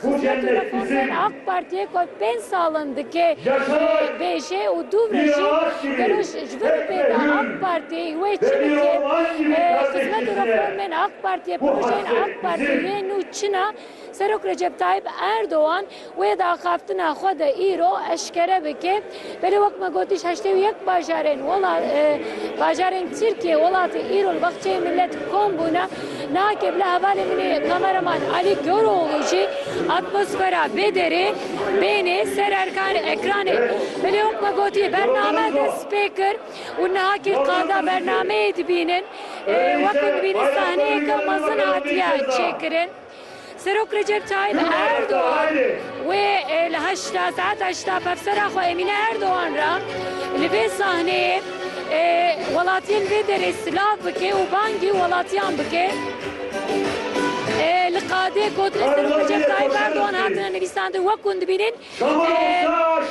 Hikûmet Kurdan a AK Partiyê ku ev pênc sal in dike bêje û dû ve jî gelo ji vê bi pê de AK Parti wê çi dike? Xizmet û reformên AK Partiyê, projeyên AK Partiyê nû çi ne? Serok Recep Tayyîp Erdogan wê daxaftina xwe de îro eşkere bike. Belê wek me gotiş heştê û yek bajarên bajarên Tirkiyê welatê îro li baxçeyê milet kom bûne. Nake bila hevalê min ê kameraman Alî Koroğlu jî atmosfera bê derê bênê ser erkan ekranê. Belê wek me gotiye bername dest pê kir û niha kê qada bernameyê dibînin wek ku dibînin sahneyeke mezin hatiye çêkirin. Serok Recep Tayyip Erdogan wê li heşta saeta heşta pevsera xwe Emîne Erdogan re li vê sahneyê welatiyên vê derê silav bike û bangî welatiyan bike. Li qadê gotinên Serok Recep Tayyip Erdogan hatine nivîsandin wek hûn dibînin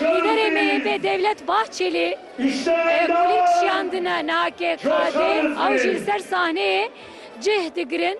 Lîderê MHP Devlet Bahçelî kulîlk şiyandine niha ke qadê ew jî li ser sahneyê cih digirin.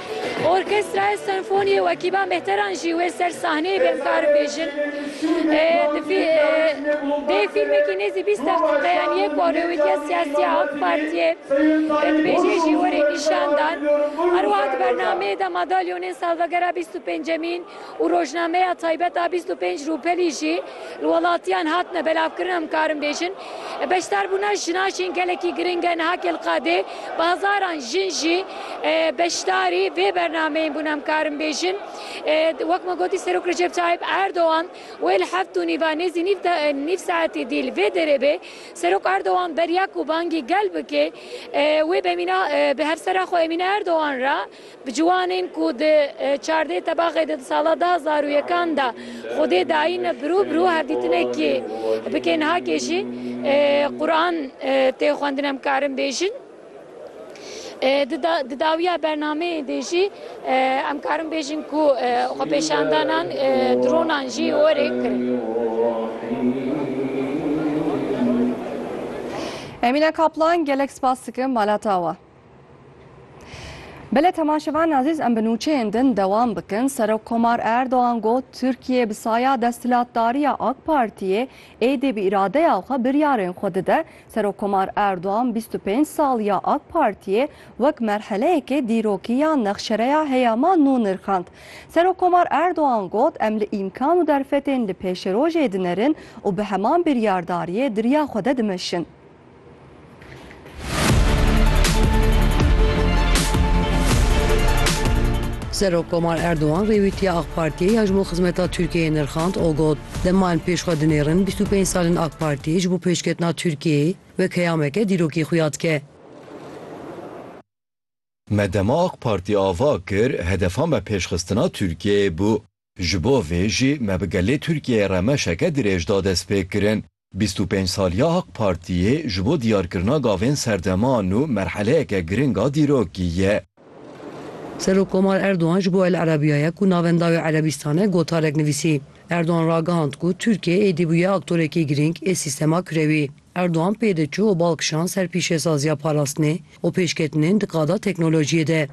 Orkestraya Senfonî û ekîba Mehteran jî wê ser sahneyê bên bikarin bêjin. Dê fîlmekî nêzî bîst deqîqeyan yê ku rewîtiya siyasî ya AK Partiyê dibêje jî werê nîşan dan. Her wiha di bernameyê de madalyonên salvegera bîst û pêncemîn, û rojnameya taybet a bîst û pênc rûpelî jî li welatiyan hatine belavkirin em karin bêjin. Beşdarbûna jinan jîn gelekî giring e niha Kelqadê bi hezaran jin jî beşdarî vê bernameyên bûn em karin bêjin. Wek me gotî Serok Recep Tayyip Erdogan wê li heft û nîva nêzî nîv de nîv saetî dî li vê derê bê. Serok Erdogan beriya ku bangî gel bike wê bi Emîne bi hevsera xwe Emîne Erdogan re Bi ciwanên ku di çardeh tebaxê de di sala du hezar û yekan de Xwedê dayîne bi rû bi rû hevdîtinekê bikin hake jî Quran tê xwendin em karin bêjin. Di dawiya bernameyê de jî em karin bêjin ku xwepêşandanan dronan jî werê kirin. Emîne Kaplan gelek spas dikim malata we. Belê temaşevan azîz em bi nûçeyên din dewam bikin. Serokkomar Erdogan got Tirkiye bi saya desthilatdariya AK Partiyê êdî bi îradeya xwe biryarên xwe dide. Serokkomar Erdogan bîst û pênc sal ya AK Partiyê wek merheleyekê dîrokî ya nexşereya heyama nû nirxand. Serokkomar Erdogan got em li îmkan û derfetên li pêşerojê dinerin û bi heman biryardariyê dirya xwe de dimeşin. Serok Komar Erdogan rêwîtiya AK Partiyê ya ji bo xizmeta Tirkiyeyê nirxand û got, Dema em pêş xwe dinêrin bîst û pênc sal in AK Partî ji bo pêşketina Tirkiyeyê wek heyameke dîrokî xuya dike. Me dema AK Partî ava kir, hedefa me pêşxistina Tirkiyeyê bû. Ji bo vê jî me bi gelê Tirkiyeyê re meşeke dirêj da destpêkirin. Bîst û pênc saliya AK Partiyê ji bo diyarkirina gavên serdeman û merheleyeke giring a dîrokî ye. Serokkomar Erdogan ji bo El Arabiya ye ku navenda wê Erebîstan e gotarek nivîsî. Erdogan ragihand ku Tirkiye êdî bûye aktorekî girîng ê sîstema kirewî. Erdogan pê de çû û bal kişand ser pîşesaziya parastinê û pêşketinên di qada teknolojiyê de.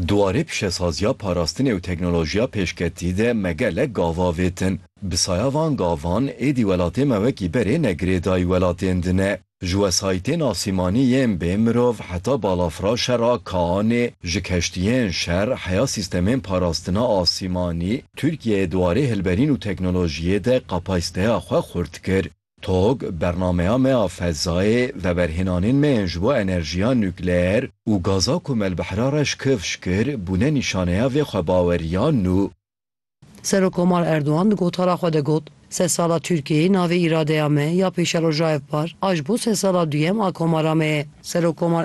Di warê pişesaziya parastinê û teknolojiya pêşketî de me gelek gav avêtin. Bi saya van gavan êdî welatê me wekî berê ne girêdayî welatên din e. Ji wesayîtên asîmanî yên bê mirov heta balafiraşe ra kaanê ji keştiyên şer heya sîstemên parastina asîmanî, Tirkiyeyê di warê hilberîn û teknolojiyê de kapasîteya xwe xurt kir. Tog, bernameya me ya fezayê, veberhênanên me yên ji bo enerjiya nukleer û gaza ku me li Bihra Reş kifş kir, bûne nîşaneya vê xwebaweriya nû. Serokkomar Erdogan di gotara xwe de got, Sedsala Tirkiyeyê navê îradeya me ya pêşerojayevpar a ji bo sedsala duyem a komara me ye. Serokkomar